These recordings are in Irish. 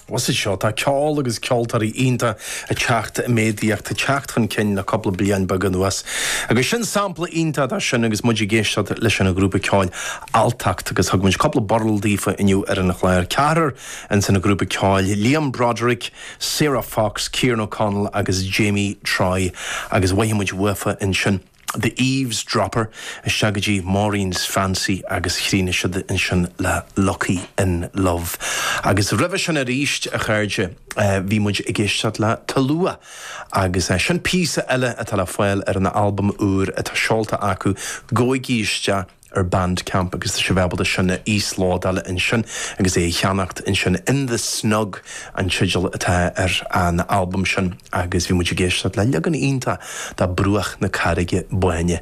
Os a seo, tá ceol agus ceoltóirí iontacha ag teacht i méadaíocht, ag teacht chun cinn le cúpla bliain beag anuas. Agus sin sampla iontach de sin agus muid ag éisteacht leis an ghrúpa ceoil Alltacht. Agus thug muid cúpla burl daofa inniu ar an chlár. Ceathrar ins an ghrúpa ceoil, Liam Broderick, Sarah Fox, Kieran O'Connell agus Jamie Troy. Agus mhothaigh muid uafa ansin. The Eavesdropper, isteach go dtí Maureen's Fancy agus chríochnaigh siad ansin le Lucky in Love. Agus roimhe sin arís, a chairde, bhí muid ag éisteacht le Tulua agus sin píosa eile atá le fáil ar an albam úr atá seolta acu, Gabhaigí isteach. ar Bandcamp agus tá sibh ábalta é sin a íoslódáil ansin agus é a cheannacht ansin, In The Snug an teideal atá ar an albam sin agus bhí muid ag éisteacht le leagan iontach de 'Bruach na Carraige Báine'.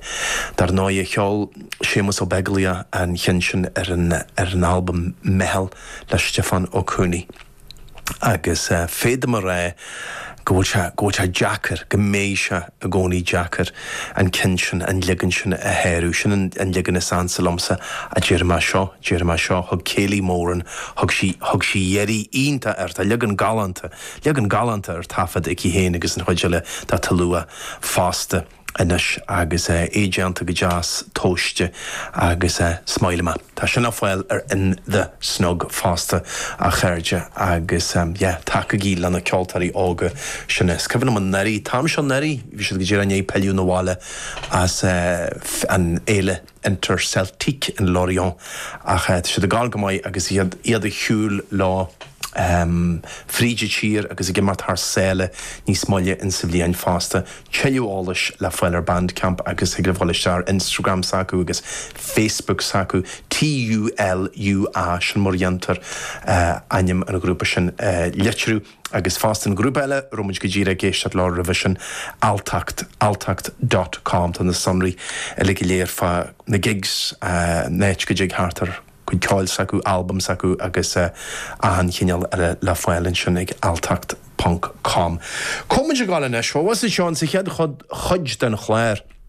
Dar ndóigh a cheol Séamus Ó Beaglaoich an cheann sin ar an albam 'Meitheal' le Stiofán Ó Cuanaigh. agus féadaim a rá go bhfuil sé, go bhfuil sé deacair, go mbeidh sé i gcónaí deacair an ceann sin, an leagan sin a shárú. Sin an, an leagan is ansa liomsa, ach déarfaidh mé seo, déarfaidh mé seo. Thug Kayleigh Moran, thug sí, thug sí iarraidh iontach air, tá leagan galánta, leagan galánta ar taifead aici féin agus an chuid eile de Tulua fosta. Anois agus é déanta go deas tomhaiste agus is maith liom é. Tá sin ar fáil ar in The Snug fosta a chairde agus yeah tacaígí leis na ceoltóirí óga sin. Is cuimhin liom anuraidh, an t-am seo anuraidh bhí siad go díreach i ndiaidh pilleadh na bhaile as an fhéile. Interceltique in Lorient ach tá siad ag gabháil go maith agus iad ag siúl leo fríd an tír agus ag imeacht thar sáile níos moille insa bhliain fosta. Tuilleadh eolais le fáil ar Bandcamp agus thig libh dhul isteach ar Instagram s'acu agus Facebook s'acu T U L U A sin mar a dhéantar ainm an ghrúpa sin a litriú. Agus fosta an grúpa eile a raibh muid go díreach ag éisteacht leo roimhe sin, Alltacht, alltacht dot com, tá na sonraí uilig go léir fá na gigs, an áit go dtig theacht ar chuid ceoil s'acu, albaim s'acu agus achan chineál eile le fáil ansin ag alltacht ponc com. Tá muid ag gabháil anois, bhuel, bhí seo insa chéad chuid den chlár,